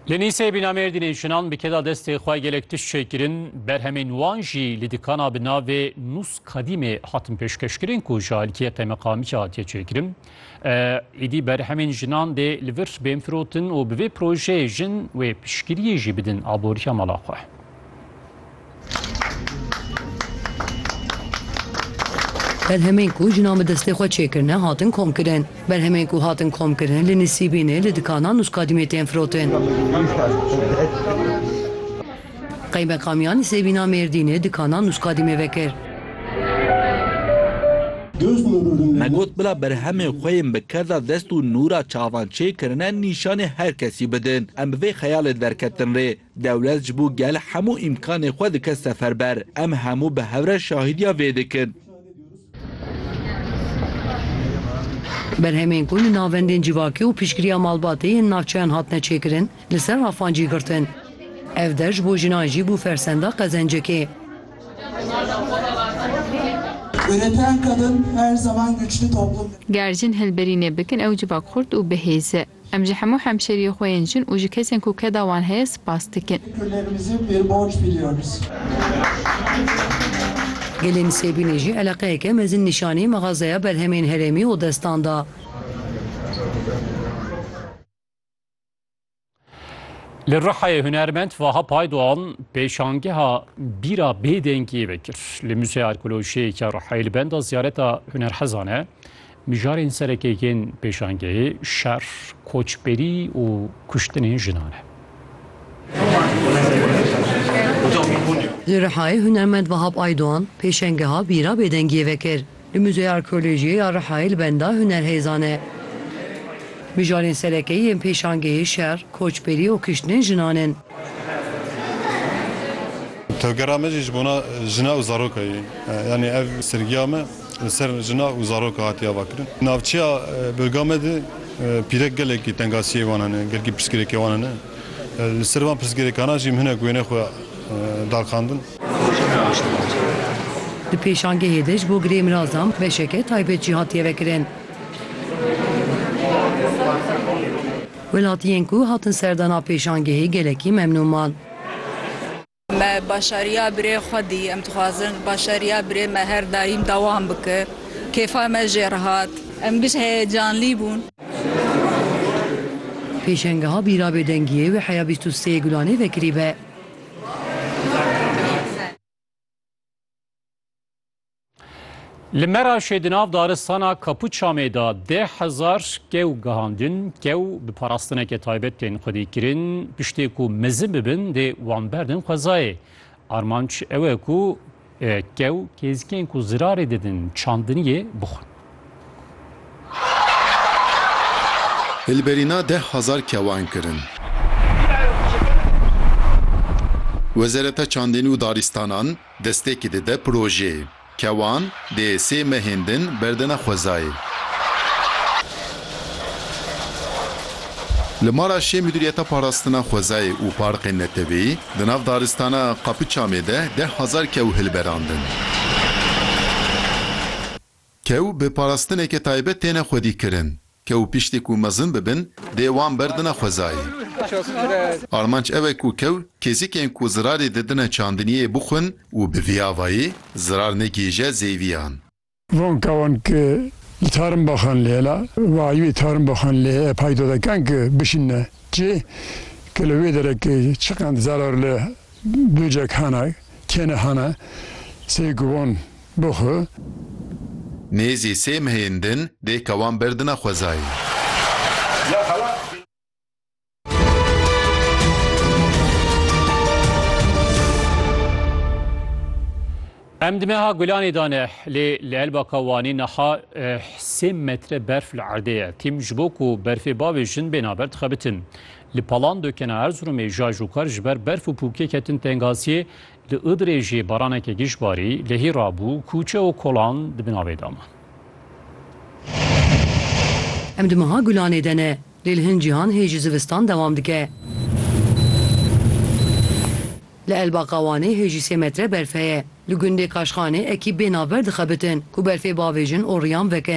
Li Nîsê bîna Mêrdînê jinan bi keda destê xwe gelek tişt çêkirin, berhemên wan jî li dikana bi navê Nûs Kadîmê hatin pêşkeşkirin ku ji aliyê qeymeqamîkê hatiye çêkirin. Êdî berhemên jinan dê li vir bên firotin û bi vê projeyê jin wê piştgiriyê jî bidin aboriya mala xwe. Berhemên ku jinan bi destê xwe çêkirine hatin komkirin. Berhemên ku hatin komkirin li Nisîbînê li dikanan û skadîmê tên firotin. Qeymeqamiya Nisêbîna Mêrdînê dikanan û skadîmê vekir. Me got bila berhemên xwe yên bi kerda dest û nûra çavan çêkirine nîşanê her kesî bidin. Em bi vê xeyalê derketin rê. Dewlet ji bo gel hemû îmkanê xwe dike seferber. Em hemû bi hev re şahîdiya vê dikin. Berhemên ku li navendên civakî û piştgiriya malbatê yên navçeyan hatine çêkirin, li ser rafan cî girtin. Ev der ji bo jinan jî bû fersenda qezencekê. Ger jin hilberînê bikin ew civak xurt û bihêz e. Em ji hemû hemşeriyê xwe yên jin û ji kesên ku keda wan heye spas dikin. Gelê Nisêbînê jî eleqeyeke mezin nîşanî mexazeya berhemên herêmî û destan da. Li Rihayê hunermend Vaha Paydoğan pêşangeha bîra bêdengiyê vekir. Li Muzeya Arkeolojiyê ya Rihayê li benda ziyareta hunerhezan e. Mijarên serekê yên pêşangehê şer, koçberî û kuştinên jinan e. Li Rihayê hunermend Vahap Aydoğan pêşengeha bîra bêdengiyê vekir. Li Muzeya Arkeolojiyê ya Rihayê li benda hunerhêzan e. Mijarên serekê yên pêşangehê şer, koçberî û kuştinên jinan in. Tevgera me jî ji bona jina û zaroka ye. Yanî ev sergiya me li ser jina û zaroka hatiye avakirin. Navçeya Bilga me de pîrek gelekî tengasiyê wan hene, gelkî pirsgirêkê wan hene. Li ser van pirsgirêkanan jî em hinek wêneyê xwe darxandin. Di pêşangehê de ji bo girêmirazan beşeke taybet jî hatiye vekirin. Welatiyên ku hatin serdana pêşangehê gelekî memnûn man. Me başariya birê xwe dî. Em dixwazin başariya birê me her daîm dewam bike. Kêfa me jê re hat. Em giş heyecanlî bûn. Pêşengeha bîra bêdengiyê wê heya bîst û sê Gulanê vekirîbe. Li Meraşê di nav daristana Kapuçamê de deh hezar kew gihandin. Kew bi parastineke taybet tên xwedî kirin. Piştê ku mezin bibin dê wan berdin xwezayê. Armanc ew e ku e, kew kêzikên ku zirarê didin çandiniyê bixwin. Hilberîna deh hezar kewan kirin. Wezareta Çandinî û Darîstanan, Destpêkê dide projeyê. Kewan dê sê mehên din berdine xwezayê. Li mala şê Mudîriyeta Parastina Xwezayê û Parkên Neteweyî di nav daristana Kapıçamê de deh hezar kew hilberandin. Kew bi parastineke taybet têne xwedîkirin. Kew piştî ku mezin bibin dê wan berdina xwezayê. Armanc ew e ku kew kêzikên ku zirarê didine çandiniyê bixwin û bi vî avayê zirar negihîje zêviyan. Van kewan ki li tarin baxan lê la wayûyê tarin baxan lê e paydo dikin ki bişînine cih ki li wê derekê çiqend zarar li Bûcek hana, kêne hana, sey gubon bi xwe. Nêzî sey mehên din, dê kewan berdina xwezayê. Em di meha gulanê de ne, lê li Elbaka Wanê niha sê metre berf li erdê ye. Tîm ji bo ku berfê bavê jin bêne ber dixebitin. Li Palan Dokena Erziromê jaj û kar ji ber berf û pûkê ketin tengasiyê, li Idirê jî baraneke giş barî, lehî rabû, kûçe û kolan di bin avê de man. Em di meha Gulanê de ne, lê li hin cîhan hê jî zivistan dewam dike. Li Elbaqa Wanê hê jî sê metre berf heye. Li gundê Kaşxanê ekî bê navber dixebitin ku berfê bavêjin û riyan vekin.